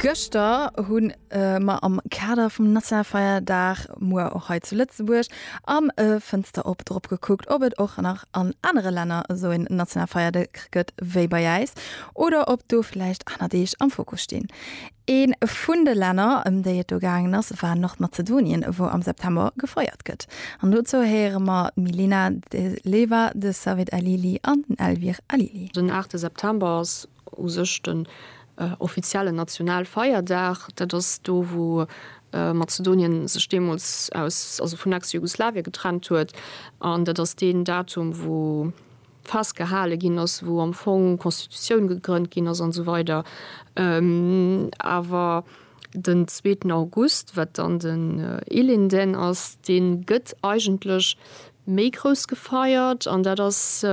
Gëschter hunn mer am Kader vum Nationalfeierdag, muer och hei zu Lëtzebuerg, am Fënster op drop gekuckt, ob et och nach an anere Länner esou een Nationalfeierdag gëtt wéi bei äis oder ob do vläicht aner Deeg am Fokus stinn. Ee vun de Länner, ëm déi et do gaangen ass, war Nordmazedonien, wou am September gefeiert gëtt. An dozou héiere mer d'Milena De Leva, de Savid Alili an den Elvir Alili. Den aachte September ass u sech den offiziellen Nationalfeierdag. Dat ass do, wou Mazedonien sech deemools aus, also vun Ex-Jugoslawien getrennt huet. An dat ass deen Datum, wou festgehale ginn ass, wou am Fong Constitutioun gegrënnt ginn ass an esou weider. Awer. Den zweeten August, wat dann den Ilinden ass, dee gëtt eigentlech méi grouss gefeiert, an dat ass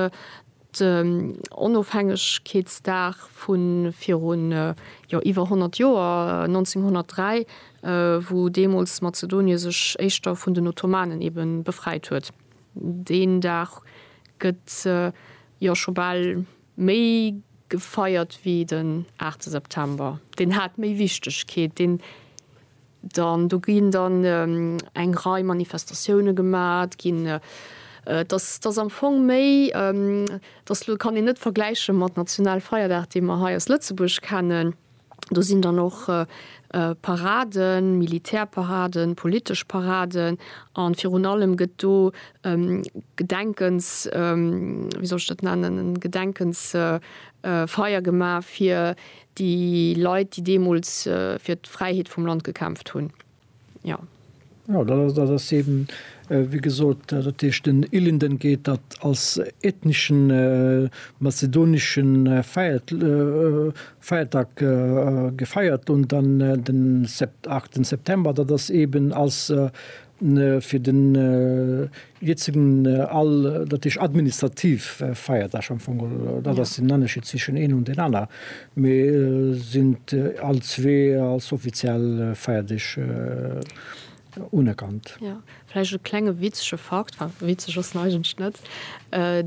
den Onofhängegkeetsdag vu virun iwwer 100 Joer, 1903, wou deemools Mazedonie sech éischter vun den Ottomanen ebe befreit huet. Deen Dag gëtt scho bal Méi gefeiert wéi den aachte September. Deen hat méi Wichtegkeet. Deen dann, do ginn dann eng Rei Manifestatioune gemat ginn. Dass, dass am Fong méi, dass elo kann een net vergläiche mat Nationalfeierdag, dee mer hei aus Lëtzebuerg kennen. Do sinn dann och Paraden, Militärparaden, politesch Paraden a virun allem gëtt do e Gedenkens, wéi soll ech dat nennen, e Gedenkensfeier gemaach fir déi Leit, déi deemools fir d'Fräiheet vum Land gekämpft hunn. Jo. Jo, dat ass, dat ass eben, wéi gesot, dat heescht den Ilinden geet dat als ethneschen mazedonesche Feiert, Feiertag gefeiert un, dann den Sept, 8 September, dat ass eben als fir den Hiert sinn all, dat heescht administrativ Feierdag am Fong, dat ass den Ennerscheed zwischen een an den aner, mee sinn all zwee als offiziell Feierdeeg unerkannt. Jo, vläicht e klenge witzege Fakt, enfin witzeg ass en eigentlech net,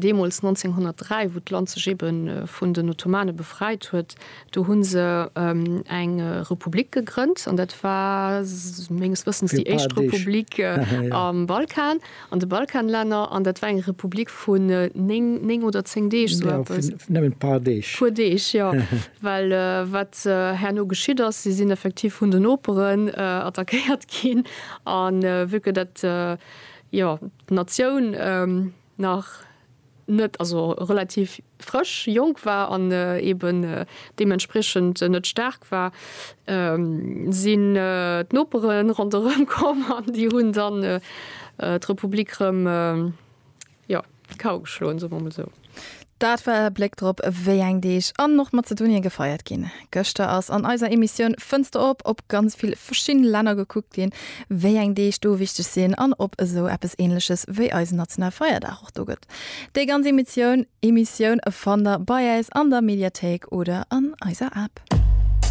deemools 1903, wou d'Land sech eebe vun den Ottomane befreit huet, Do hunn se eng Republik gegrënnt an dat war menges Wëssens déi éischt Republik am Balkan, an de Balkanlänner, an dat war eng Republik vun néng, néng oder zéng Deeg, sou eppes. Nëmmen d'paar Deeg. Puer Deeg, jo. Well wat herno geschitt ass, si sinn effektiv vun den Noperen attackéiert ginn, a vu que dat, jo, d'Natioun, nach net, also relativ frësch, jonk war an eben deementspriechend net staark war, sinn d'Nopere ronderëm komm an déi hunn dann d'Republik rëm, jo, kal geschloen, soe mer emol esou. Dat war e Bléck drop, wéi eng Deeg an och Mazedonien gefeiert ginn. Gëschter ass an eiser Emissioun Fënster op op ganz vill verschidden Länner gekuckt ginn, wéi eng Deeg do wichteg sinn an ob esou eppes ähnleches wéi eisen nationale Feierdag och do gëtt. Déi ganz Emissioun Emissioun fannt der bei äis an der Mediathéik oder an eiser App.